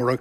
Mar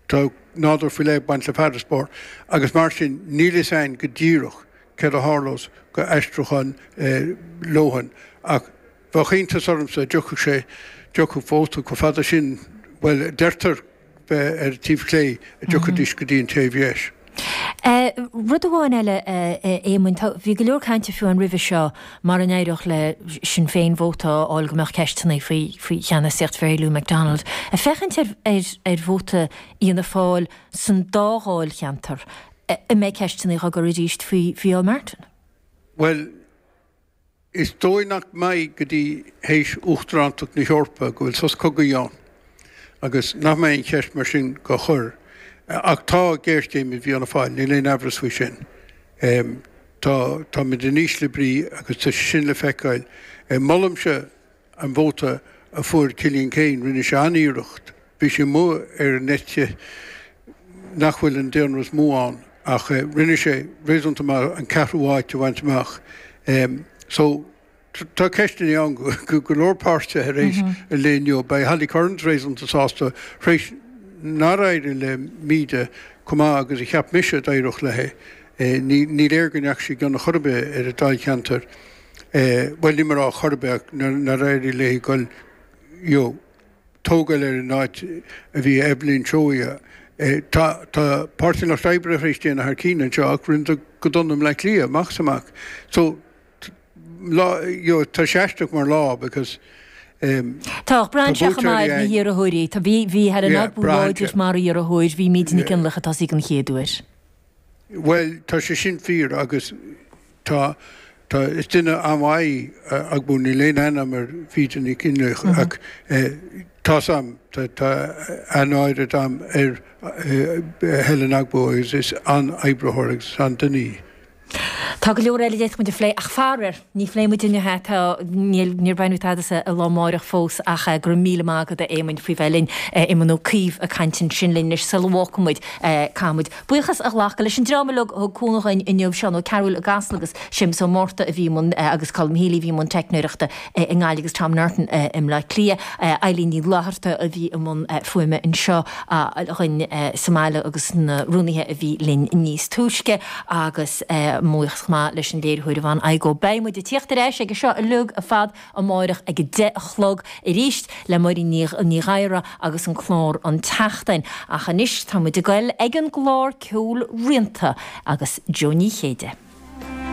tá nádúr faoi leith ag baint le farasbarr agus mar sin níl fhios a'inn go díreach céard a tharlós go aistriúchán Lohan ach bheadh iontas ormsa dá dtiocfadh sé, dtiocfadh vóta chomh fada sin, bhuel a deirtear bheith ar taobh chlé, dá dtiocfaidís go dtí an taobh dheis. Rud amháin eile, a Éamoinn, tá, bhí go leor cainte fiú amháin roimhe seo mara n-éireodh le Sinn Féin vóta a fháil go mbeadh ceisteanna faoi faoi cheannasaíocht Mhary Lou McDonald. Ag féachaint ar ar vóta Fhianna Fáil san dá dháilcheantar, an mbeidh ceisteanna á gcur arís faoi Mhicheál Martin? Bhuel, Is dóigh nach mbeidh go dtí théis Uachtarántacht na hEorpa go bhfuil sos cogaidh ann, agus nach mbeidh an cheist mar sin dhá chur. Ach tá géarchéim i bhFianna Fáil, níl aon aimhreas faoi sin. Tá tá muid in ísle brí agus tá sé sin le feiceáil. Molaimse An vóta a fuair Cillian Keane, rinne sé an-iarracht, bhí sé amuigh ar an eite nach bhfuil an daonra is mó ann, ach rinne sé réasúnta maith an ceathrú háit a bhaint amach. So tá ceisteanna ann go go leor páirtithe tar éis an lae inniu. Beidh Holly Cairns réasúnta sásta tar éis nár éirigh le Míde chomh maith agus a cheap mise a d'éireodh léi. Ní léir go ndeachaigh sí i gcion ar chor ar bith ar a dáilcheantar. Bhuel, níl mé a rá chor ar bith, ach nár éirigh léi goil, you know, tógáil ar an áit a bhí Eibhlín Seoighe. Tá Páirtí an Lucht Oibre tar éis déanamh thar cinn anseo ach rinneadar go dona i mBleá Cliath, amach is amach. So, tá, you know, tá sé aisteach mar lá because, Tá braitheann sé chomh maith ar na hiarrthóirí. Tá, bhí, bhí Helen Ogbu láidir mar iarrthóir, bhí Míde Nic Fhionnlaoich atá ag an chéad uair. Bhuel, tá sé sin fíor agus tá, tá, is duine an-mhaith Ogbu, níl aon aithne a'm ar Mhíde Nic Fhionnlaoich ach tá's a'm, tá, tá an-aird a'm ar Helen Ogbu agus is an-oibritheoir agus is an-duine í. Tá go leor eile a d'fhéadfaimid a phlé ach faraor, Ní phléifidh muid inniu é, tá, níl, níor bhain muid tada as an lá amáireach fós ach go raibh míle maith agat, a Éamoinn, faoi bheith linn, Éamonn Ó Cuív ag caint ansin linn. Anois, sula bhfágfaidh muid, caithfidh muid buíochas a ghlacadh leis an dream uilig a thug cúnamh dhuinn inniu, Seán Ó Cearúil i gCasla agus Séamus Ó Márta a bhí i mbun agus Colm Healy a bhí i mbun teicneoireachta i nGaillimh agus Tom Norton i mBleá Cliath, Eileen Ní Fhlátharta a bhí i mbun fuaime anseo dhuinn sa mbaile agus na rúnaithe a bhí linn níos túisce. Agus buíochas chomh maith leis an léiritheoir Yvonne Igoe, beidh muid ag tíocht ar ais ag an seo uilig ar fad amárach ag a deich a chlog arís le Máirín Ní Ghadhra agus an clár An tSeachtain. Ach anois tá muid ag goil ag an gclár ceoil Rianta agus Jó Ní Chéide.